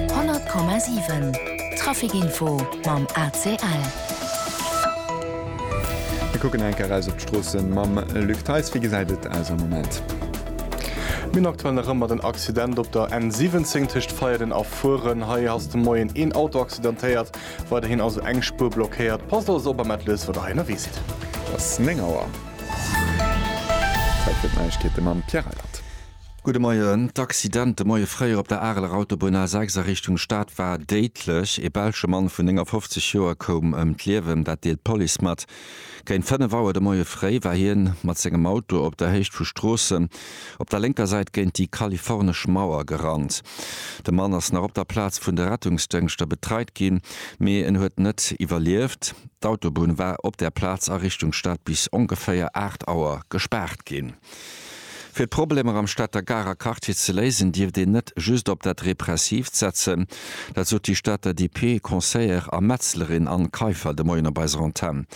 100,7 Traficinfo mam ACL. Mir kucken eng Kéier raus op d'Stroossen mam Luc Theis. Wéi gesäit et aus am Moment? Mir hunn aktuell nach ëmmer den Accident op der N17 tëscht Veierden a Furen. Hei ass de Moien een Auto accidentéiert. Weiderhin ass elo eng Spuer blockéiert. Passt also op a mellt lues, wat der hei ënnerwee sidd. Et ass 9 Auer. Zäit fir d'Neiegkeete mam Pierre Reyland. Gudde Moien. D'Accident de Moie fréi op der Areler Autobunn A6 a Richtung Stad war déidlech. E belsche Mann vun 59 Joer koum ëm d'Liewen, dat deelt d'Police mat. Géint 5 Auer de Moie fréi war hien mat sengem Auto op der Héicht vu Stroossen op der lénker Säit géint déi kalifornesch Mauer gerannt. De Mann ass nach op der Plaz vun de Rettungsdëngschter betreit ginn, mee en huet net iwwerlieft. D'Autobunn war op där Plaz a Richtung Stad bis ongeféier 8 Auer gespaart ginn. Fir d'Problemer am Stater Garer Quartier ze léisen, dierft een net just op dat Repressiivt setzen. Dat sot déi Stater DP Conseillère a Metzlerin Anne Kaiffer de Moien op eiser Antenn.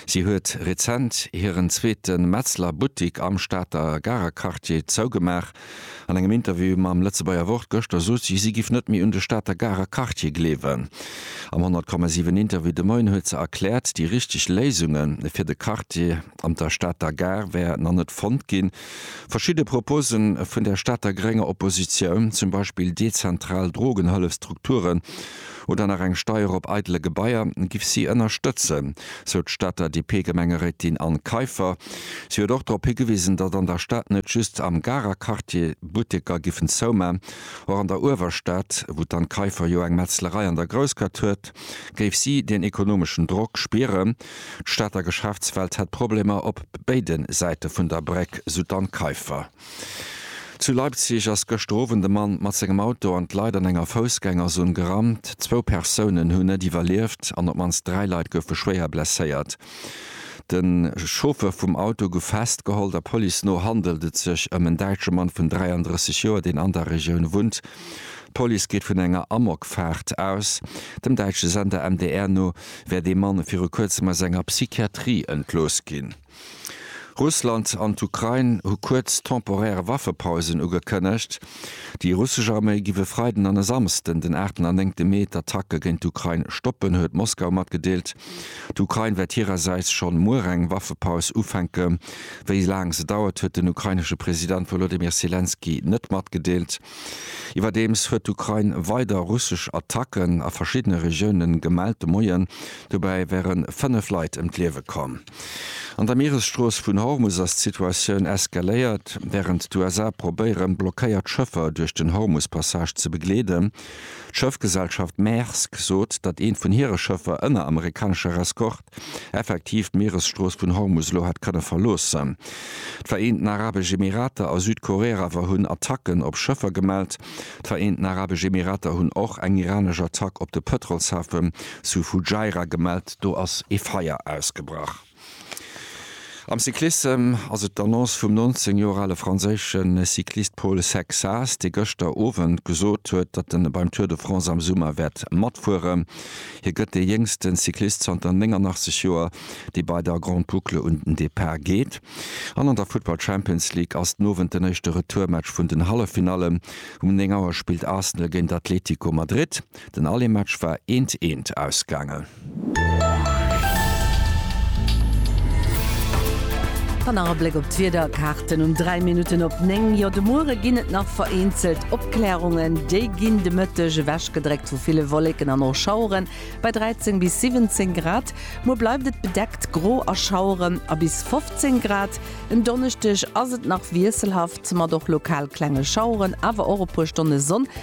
Si huet rezent hiren zweete Metzler Buttik am Stater Garer Quartier zougemaach. An engem Interview mam Lëtzebuerger Wort gëschter sot si, si giff net méi un de Stater Garer Quartier gleewen. Am 100,7 Interview de Moien huet se erkläert, déi richteg Léisunge fir de Quartier, an der Stater Gare wär nach net fonnt ginn. Verschidde Propose vun der Stater grénger Oppositioun, zum Beispill dezentral Drogenhëllefstrukturen oder nach eng Steier op eidele Gebaier, giff si ënnerstëtzen, sou d'Stater DP-Gemengeréitin Anne Kaiffer. Si huet och drop higewisen, datt an der Stad net just am Garer Quartier Butteker giffen zouman. Och an der Uewerstad, wou d'Anne Kaiffer jo eng Metzlerei an der Groussgaatt huet, géif si deen ekonomeschen Drock spieren. D'Stater Geschäftswelt hätt Problemer op béide Säite vun der Bréck, sou d'Anne Kaiffer. Zu Leipzig ass gëschter Owend e Mann mat sengem Auto an d'Leit an enger Foussgängerzon gerannt. Zwou Persounen hunn net iwwerlieft an op d'mannst dräi Leit goufe schwéier blesséiert. De Chauffer vum Auto gouf festgeholl. Der Police no handelt et sech ëm en däitsche Mann vun 33 Joer, deen an der Regioun wunnt. D'Police geet vun enger Amokfaart aus. Dem däitsche Sender MDR no wär dee Mann viru kuerzem aus enger Psychiatrie entlooss ginn. Russland an d'Ukrain hu kuerz temporär Waffepausen ugekënnegt. Déi russesch Arméi giff e Freiden an e Samsden, den aachten an néngte Mee, d'Attacke géint d'Ukrain stoppen, huet Moskau matgedeelt. D'Ukrain wäert hirersäits schonn muer eng Waffepaus ufänken. Wéi laang se dauert, huet den ukrainesche President Wolodymyr Selenskyj net matgedeelt. Iwwerdeems huet d'Ukrain weider russesch Attacken a verschiddene Regioune gemellt de Moien. Dobäi wäre fënnef Leit ëm d'Liewe komm. An der Mieresstrooss vun Hormus ass d'Situatioun eskaléiert. Wärend d'USA probéieren, blockéiert Schëffer duerch den Hormus-Passage ze begleeden. D'Schëffgesellschaft Maersk sot, datt eent vun hire Schëffer ënner amerikaneschem Reskort effektiv d'Mieresstrooss vun Hormus elo hätt kënne verloossen. D'Vereenten Arabesch Emirater a Südkorea awer hunn Attacken op Schëffer gemellt. D'Vereenten Arabesch Emirater hunn och eng iranesch Attack op de Pëtrolshafe zu Fujairah gemellt. Do ass ee Feier ausgebrach. Am Cyclissem ass et d'Annonce vum 19 Joer ale franséische Cyclist Paul Sexas, dee gëschter Owend gesot huet, datt en beim Tour de France am Summer wäert matfueren. Hie gëtt dee jéngsten Cyclist zanter 89 Joer, dee bei der Grande Boucle un den Depart geet. An an der Futtball Champions League ass den Owend den éischte Retourmatch vun den Halleffinallen. Um 9 Auer spillt Arsenal géint Atlético Madrid. Den Allemaatch war eent eent ausgaangen. Dann nach e Bléck op d'Wiederkaarten um 3 Minutten op 9. Jo, de Muere ginn et nach vereenzelt Opkläerungen, déi ginn de Mëtteg ewechgedréckt vu ville Wolleken an och Schaueren bei 13 bis 17 Grad. Muer bleift et bedeckt, gro a Schaueren a bis 15 Grad. En Donneschdeg ass et nach wiesselhaft mat och lokal klenge Schaueren, awer och e puer Stonne Sonn.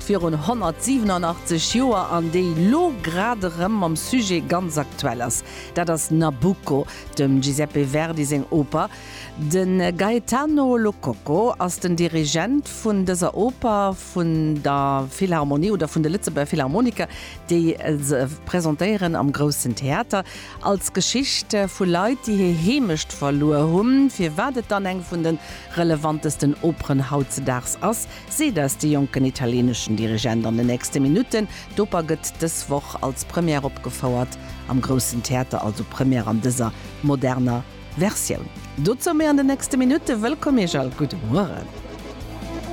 virun 187 Joer an déi lo grad erëm mam Sujet ganz aktuell ass, dat ass Nabucco, dem Giuseppe Verdi seng Oper. De Gaetano Lococo ass den Dirigent vun dëser Oper vun der Philharmonie oder vun de Lëtzebuerger Philharmoniker, déi se presentéieren am Groussen Theater als Geschicht vu Leit, déi hir Heemecht verluer hunn. Firwat et dann eng vun de relevantesten Operen hautzedaags ass, Seet eis de jonken italieneschen Dirigent an de nächste Minutten. D'Oper gëtt dës Woch als Première opgefouert am Groussen Theater, also Première an dëser moderner Versioun. Dozou méi an de nächste Minutten. Wëllkomm Iech all, gudde Mueren.